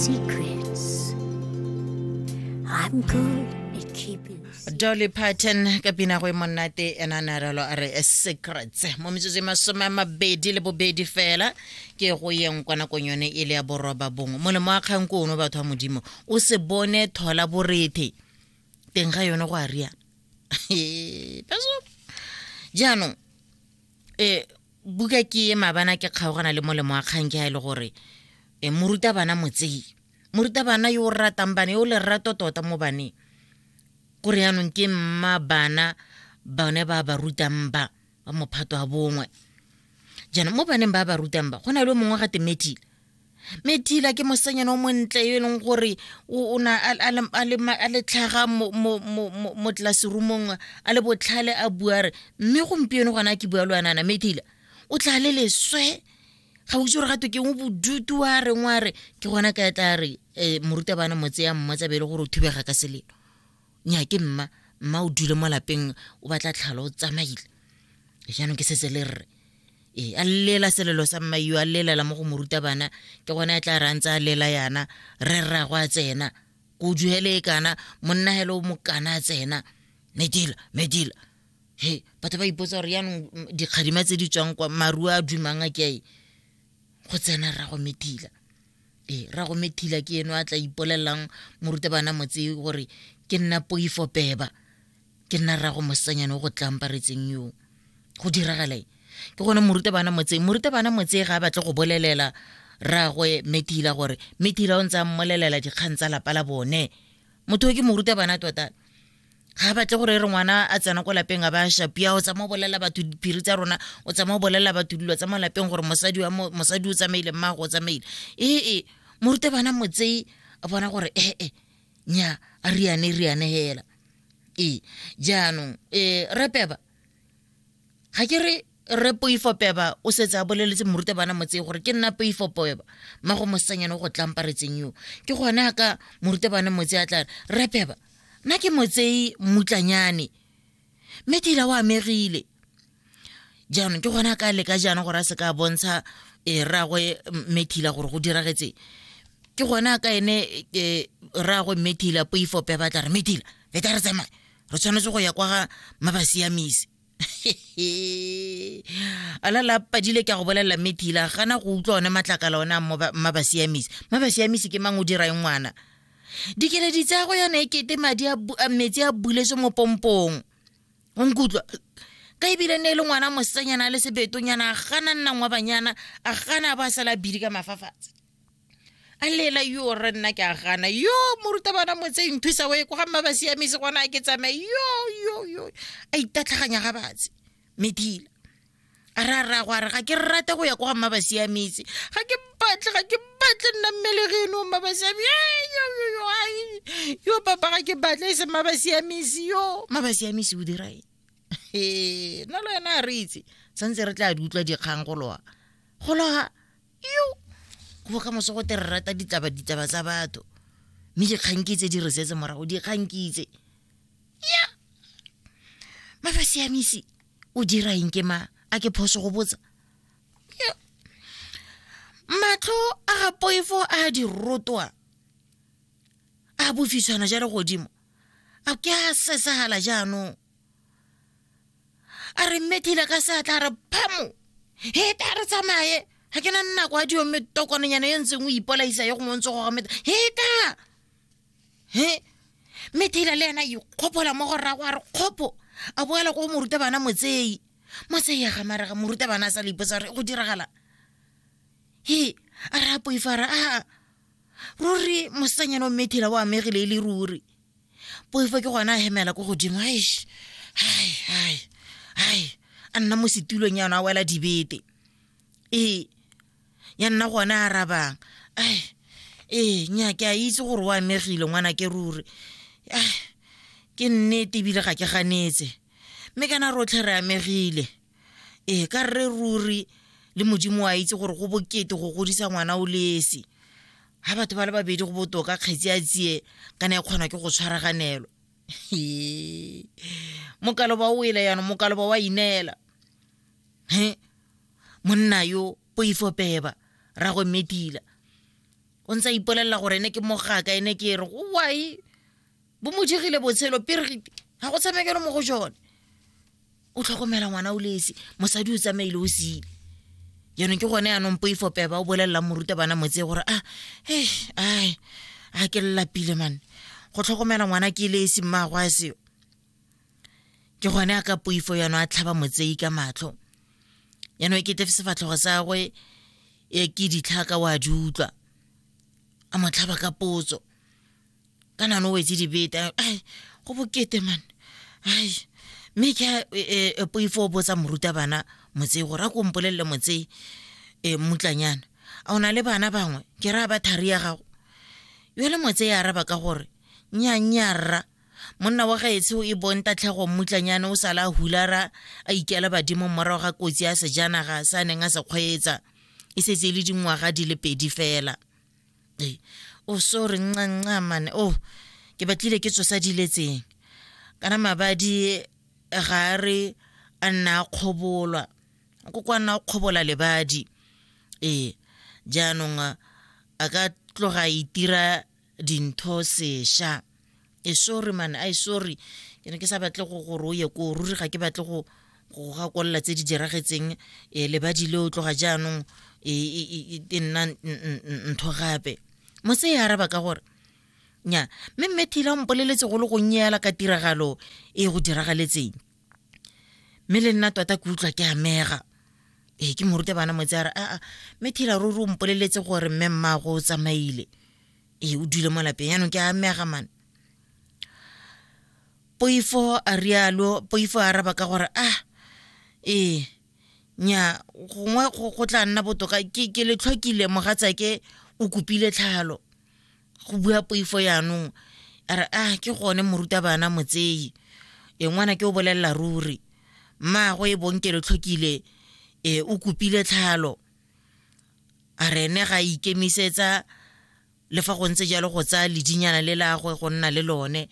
Secrets. I'm good at keeping. dolly parton ka pina go e monnate ena a ne a ralo a re eh, secrets mo metsotso e masome a mabedi le bobedi fela ke go yeng kwa nakong yone e le ya boroba bongwe molemo wa kgang ko ono batho ba modimo o se bone thola borethe teng ga yone go a riana Ee, Pastor. jaanong um buka ke e mabana ke kgaogana le molemo wa kgang ke ga e le gore e morutabana motsei morutabana yo o ratang bana yo o lerato tota mo baneng kore yanong ke mma bana bone ba ba rutang ba ba mophato wa bongwe jaanong mo baneng ba ba rutang ba go na le mongwe ga temethile mme thila ke mosanyana o montle yo e leng gore o na a le tlhaga mo tlaseromong a le botlhale a bua re mme gompieno gona ke bua le wanana mme thila o tla le leswe ga o itse gore gato ke o bodutu wa reng wa re ke gona ka tla re um morutabana motse ya mmotsa be e le gore o thubega ka selelo nya ke mma mma o dule mo lapeng o batla tlhalo o tsamaile jaanong ke setse le rre ee a lela selelo sa mma yo a lelela mo go moruta bana ke gone a tla re a ntse a lela yana re rrago a tsena ko duhele e kana monna hele o mokana a tsena medila medila he batho ba ipotsa gore yaanong dikgadima tse di tswang kwa maruo a dumang a ke go tsena rrago medila ee ra go methila ke eno a tla ipolelelang morutabana motse gore ke nna poifo peba ke nna ra go mosanyane o go tlamparetseng yo go diragale ke gone morutabana motse morutabana motse ga a batle go bolelela ragwe methila gore methila o ntse a mmolelela dikgang tsa lapa la bone motho o ke morutabana tota ga batle gore re ngwana a tsena ko lapeng a ba a shapia o tsamaya o bolelela batho diphiri tsa rona o tsamaya o bolelela batho dilo tsa mo lapeng gore mosadi o tsamaile mmago o tsamaile ee morute bana motsei a bona gore ee eh, eh, nya a riane riane hela ee jaanong um eh, repeba ga ke re re poifo peba o setse a boleletse morutabana motse gore ke nna poifo peba mma go mosanyane o go tlamparetseng yo ke gone a ka morutabana motse a tla re peba nna ke motsei mmutlanyane mme ke ile wa amegile jaanong ke gone a ka leka jaana gore a se ka bontsha e eh, ragwe methila gore go diragetse ke gone a ka ene eh, ragwe methila poifo peba tla re methila feta re tsamaye re tshwanetse go ya kwa ga mabasiamisi a la lapadile ke a go bolelela mme thila gana go utlwa one matlakala one a mabasiamisi mabasiamisi ke mang o dira eng ngwana dikeledi tsa go yana e kete madi a metsi a buletse mo pompong o nkutlwa ka ebile ne e le ngwana mosetsanyana a le sebetonyana a gana nnang wa banyana a gana a ba sala bidi ka mafafatshe a lela yo re nna ke a gana yo morutabana motse nthusa o e kwa mma ba siamese gona ke tsamaye yo yo yo a itatlhaganya ga batse medila a re a raya go a re ga ke rate go ya kwa mma ba siametse ga ke batle ga ke batle nna mmele ge eno mma ba siame yo papa ga ke batle e se mma ba siamese yo mma ba siamese o dira eng nna le wena a re itse santse re tla di utlwa dikgang go loa go loa yo go ka moso go te re rata ditaba ditaba tsa batho mme dikgankitse di re setse morago dikgankitse ya mafa siamisi o dira eng ke ma a ke phoso go botsa matlho a ga poifo a di rotwa a bofiswana ja le godimo a ke a sesagala jaanong a re mme kile ka seatla a re phamo he ta re tsamaye ga ke na nako a dio mme tokononyana yo ntseng o ipolaisa yo gongwe ntse go gameta he ta he mme thila le ena ikgopola mo go rrago a re kgopo a boela ko moruta bana motseyi motseyi ya gamarega moruta bana a sa le ipotsa gore go diragala he a re a poifara a ruri mosanyana o mmethila o amegile e le ruri poifo ke gona a hemela ko godimo aish hai hai hai a nna mo setulong ya ona a wela dibete ee ya nna gone a arabang ai ee nya ke a itse gore o amegile ngwana ke ruri ke nnete ebile ga ke ganetse mme kana rotlhe re amegile ee ka rre ruri le modimo wa itse gore go bokete go godisa ngwana o lesi ga batho ba le babedi go botoka kgetsi a tsie kana e kgona ke go tshwaraganelwa mokalo ba o ele yana mokalo ba wa ineela he monna yo poifo peba ra go medila o ntse a ipolelela gore ene ke mogaka ene ke re owae bo mo dirile botshelo pirigiti ga go tshamekelo mo go jone o tlhokomela ngwana o lesi mosadi o tsamaile o sile jaanong ke gone yanong poifo peba o bolelelang moruta bana motse gore a ah, e ai a ke llapile mane go tlhokomela ngwana ke lesi mmago a seo ke gone a ka poifo yano a tlhaba motsei ka matlho yanong e kete sefatlhogo sa gwe e ke ditlhaka o a di utlwa a mo tlhaba ka potso ka nano o wetse dibeta ai go bokete man ai mme ke a e, e, e, poifo o botsa morutabana motsei gore a ko mpolelele motsei um mmutlanyana a o na le bana bangwe ke raya ba thari ya gago yo le motse ya araba ka gore nyanyarra monna wa gaetsho e bong tatlhego mmutlanyane o sala hulara a ikela badimo morago ga kotsi ya sejanaga sa neng a se kgweetsa e setse e le dingwaga di le pedi fela e o sorry ncanca mane o oh, ke batlile ke tsosa diletseng kana mabadi ga a re a nna a kgobolwa ko kwa nna o kgobola lebadi ee jaanong a ka tloga itira dintho sesha e sorry man i sorry ke ne ke sa batle go gore o ye ko ruri ga ke batle go go gakolela tse di diragetseng um lebadi le o tloga jaanong e, e, e, e nna ntho gape motse e araba ka gore nya mme mme thila o mpoleletse go le gonnye yala ka tiragalo e go diragaletseng mme le nna tota ke utlwa ke amega ee ke morute bana motse a re aa mme thila ruri o mpoleletse gore mme mmago o tsamaile ee o dule mo lapeng yaanong ke a amega mane poifo a rialo poifo a araba ka gore ah ee nya gongwe go go tla nna botoka ke ke le tlhokile mogatsake o kopile tlhalo go bua poifo yaanong a re ah ke gone morutabana motseyi e ngwana ke o bolelela ruri mmaago e bong ke le tlhokile e o kopile tlhalo a re ene ga ikemisetsa le fa go ntse jalo go tsaya ledinyana le lagwe go nna le lone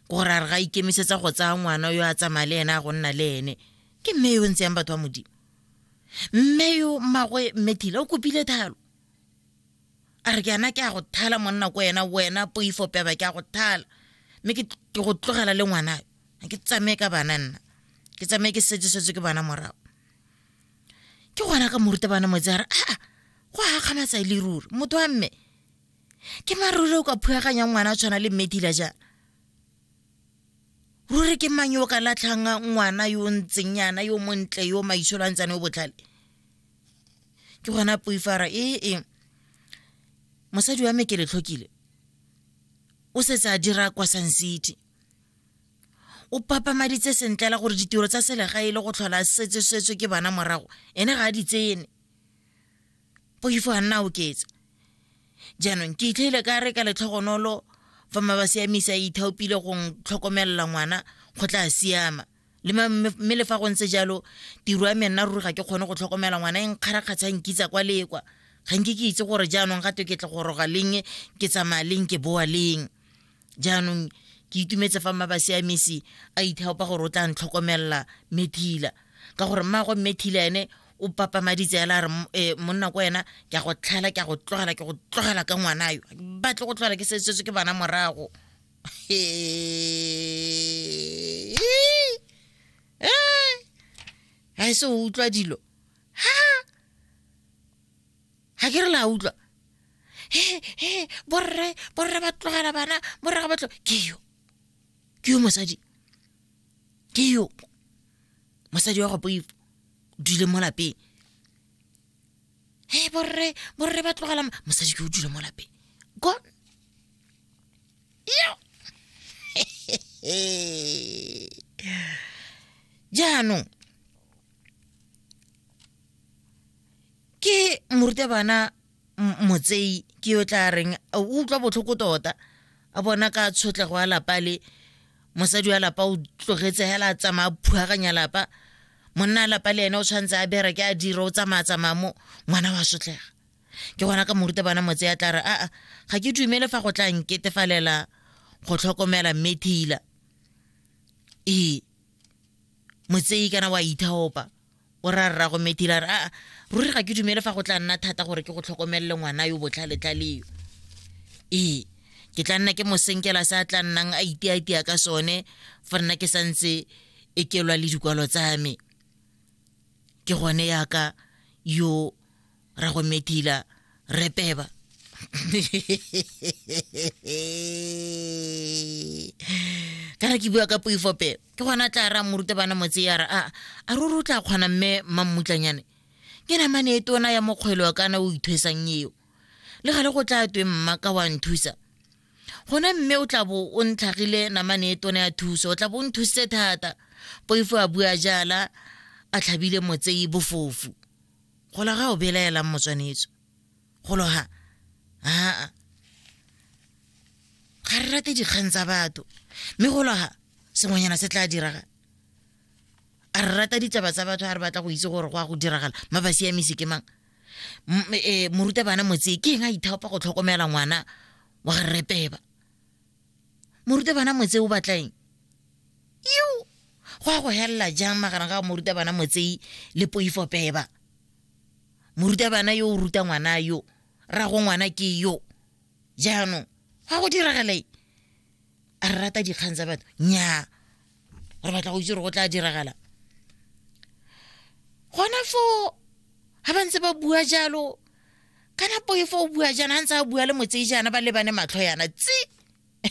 gore a re ga ikemisetsa go tsaya ngwana yo a tsamaya le ene a go nna le ene ke mme yo o ntse yang batho ba modimo mme yo mmagwe mme thile o kopile thalo a re ke ana ke a go thala monna ko ena wena poifo peba ke a go thala mme ke go tlogela le ngwana ke tsamaye ka bana nna ke tsamaye ke setsesetse ke bana morago ke gona ka morutabana motse a re aa go akgamatsa le ruri motho wa mme ke maruri o ka phuyaganyang ngwana a tshwana le mmedila jaana ruri ke mang yo o ka latlhang ngwana yo o ntseng yana yo montle yo maitsholo a ntsane o botlhale ke gona poifara e e mosadi wa me ke letlhokile o setse a dira kwa sun city o papamaditse sentlela gore ditiro tsa selegae e le go tlhola setsesetswe ke bana morago ene ga a di tsene poifo a nna a oketsa jaanong ke itlhaile ka re ka letlhogonolo fa maba siamisa e ithaopile go tlhokomelela ngwana go tla siama mme le fa go ntse jalo tiro ya me nna ruri ga ke kgone go tlhokomela ngwana e nkgarakgatsha nkitsa kwa lekwa ga nke ke itse gore jaanong ga to ke tle go roga leng ke tsamaya leng ke boa leng jaanong ke itumetse fa mma basiamisi a ithaopa gore o tla ntlhokomelela methila ka gore mmaagwe mmethila ene o papamaditse ela re eh, monna ko wena ke a go tlhela ke a go tlogela ke go tlogela ka ngwana yo batle go tlogela ke sesetswe ke bana morago ga e se o utlwa dilo ha ga ke re la utlwa he he borre borre ba tlogela bana borre ga batlo ke yo ke yo mosadi ke yo mosadi wa go boipo dule mo lapeng he borre borre ba tlogela mosadi ke o dule mo lapeng gone yo jaanong ke morutabana motsei ke yo tla reng o utlwa botlhoko tota a bona ka tshotlego ya lapa le mosadi wa lapa o tlogetse hela a tsamaya phuaganya lapa monna lapa le ene o tshwanetse a bere ke a dira o tsamaya tsamaya mo ngwana wa sotlega ke gona ka moruta bana motse ya tla re aa ga ke dumele fa go tla nketefalela go tlhokomela mme thila ee motseyi kana wa ithaopa o ra rra go metila re aa ruri ga ke dumele fa go tla nna thata gore ke go tlhokomelele ngwana yo botlhaletlhaleo ee ke tla nna ke mosenkela se a tla nnang a iteatea ka sone fa nna ke santse e kelwa le dikwalo tsa me ke gone yaka yo ra go medila re peba kana ke bua ka poifope ke gona tla ra morute bana motse ya re a a ruri o tla kgona mme mammutlanyane ke namane e tona ya mokgwelo kana o ithwesang eo le gale go tla twe mma ka wa nthusa gona mme o tla bo o ntlhagile namane e tona ya thuso o tla bo o nthusitse thata poifo a bua jala a tlhabile motsei bofofu Golo ga o belaelang motswanetso. Golo ha. Haa. Ga re rate dikgang tsa batho. Mme golo ha, sengwenyana se tla diraga. A re rata ditaba tsa batho a re batla go itse gore go a go diragala. Ma ba siamisi ke mang? Eh, morutabana motsee ke eng a ithaopa go tlhokomela ngwana wa ga rreteba morutabana motsei o batlaeng yo go ya go helela jang magareng ga morutabana motsei le poifo peba morutabana yo o ruta ngwana yo ra go ngwana ke yo jaanong ga go diragaleng a re rata dikgang tsa batho nyaa re batla go itse gore go tla diragala gona foo ga ba ntse ba bua jalo kana poefo o bua jaana a ntse a bua le motsei jaana ba lebane matlho yana tsi